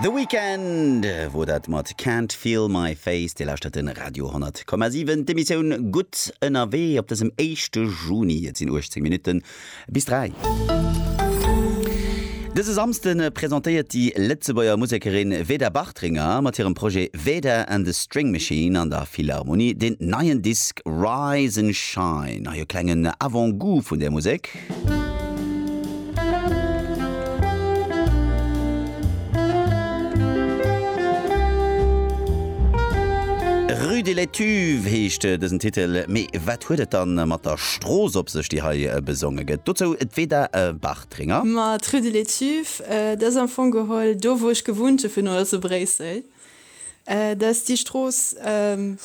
The Weeknd wor dat mat Can't Feel My Face. Dir lauschtert de Radio 10,7, d'Emissioun Gutt ënnerwee op dësem éischte Juni. Et sinn 18 Minutten bis 3. Dëse Samsde presentéiert déi Lëtzebuerger Musekerin Veda Bartringer mat hirem Projet Veda and the String Machine an der Philharmonie deen neien Disk Rise and Shine. Hei e klengen Avant-Goût vun där Musek. Rue de l'Etuve heescht dësen Titel, mee wat huet et dann mat der Strooss op sech, déi hei besonge gëtt? Dozou d'Veda Bartringer. Ma d'Rue de l'Etuve, dat ass am Fong geholl do, wou ech gewunnt hu virun allem zu Bréissel. Dat ass déi Strooss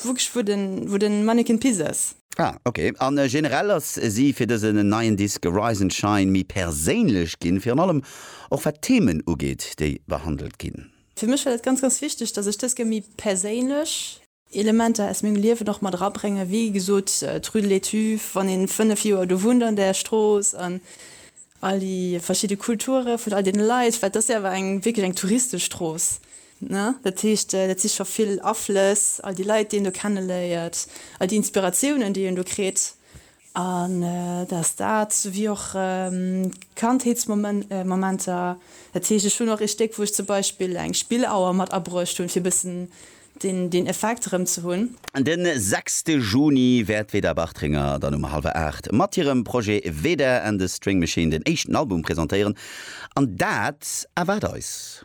wou den Manneken Pis ass. Ah ok, a generell ass si fir dëse neien Disk Rise and Shine méi perséinlech ginn, virun allem och wat d'Themen ugeet, déi behandelt ginn? Fir mech war dat ganz, ganz wichteg, dass ech dës Kéier méi perséinlech. Elementer aus mengem Liewen och mat erabréngen, wéi gesot d'Rue de l'Étuve, wann ee 5 Joer do wunnt an där Strooss, an all déi verschidde Kulture vun all deene Leit, well et ass jo awer eng wierklech eng touristesch Strooss, Dat heescht, dat si scho vill Aflëss, all déi Leit, déi een do kenneléiert, all déi Inspiratiounen, déi een do kritt. An dass dat, wéi och Kandheetsmomenter, dat heescht, ech hunn och ee Stéck, wou ech zum Beispill eng Spillauer mat abruecht hunn, fir e bëssen deen Effekt erëm ze hunn. De sechste Juni wäert d'Veda Bartringer dann um hallwer aacht mat hirem Projet Veda and the String Machine den éischten Album presentéieren. An dat erwaart eis.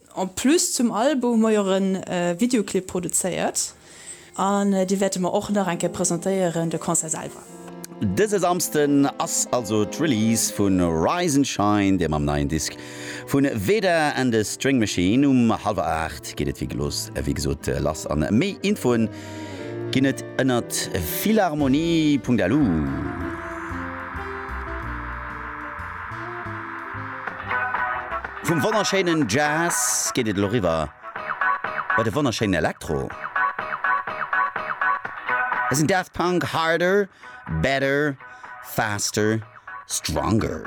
En plus zum Album hu mer jo och e Videoclip produzéiert an dee wäerte mer och nach eng Kéier presentéieren, de Concert selwer. Dëse Samsden ass also d'Release vu Rise and Shine, deem am neien Disk vu Veda and the String Machine. Um hallwer 8 geet et wéi gelooss wéi gesot lass an méi Infoe ginn et ënnert philharmonie.lu. Vum wonnerschéinen Jazz geet et elo riwwer bei de wonnerschéinen Elektro. Et sinn Daft Punk, Harder, Better, Faster, Stronger.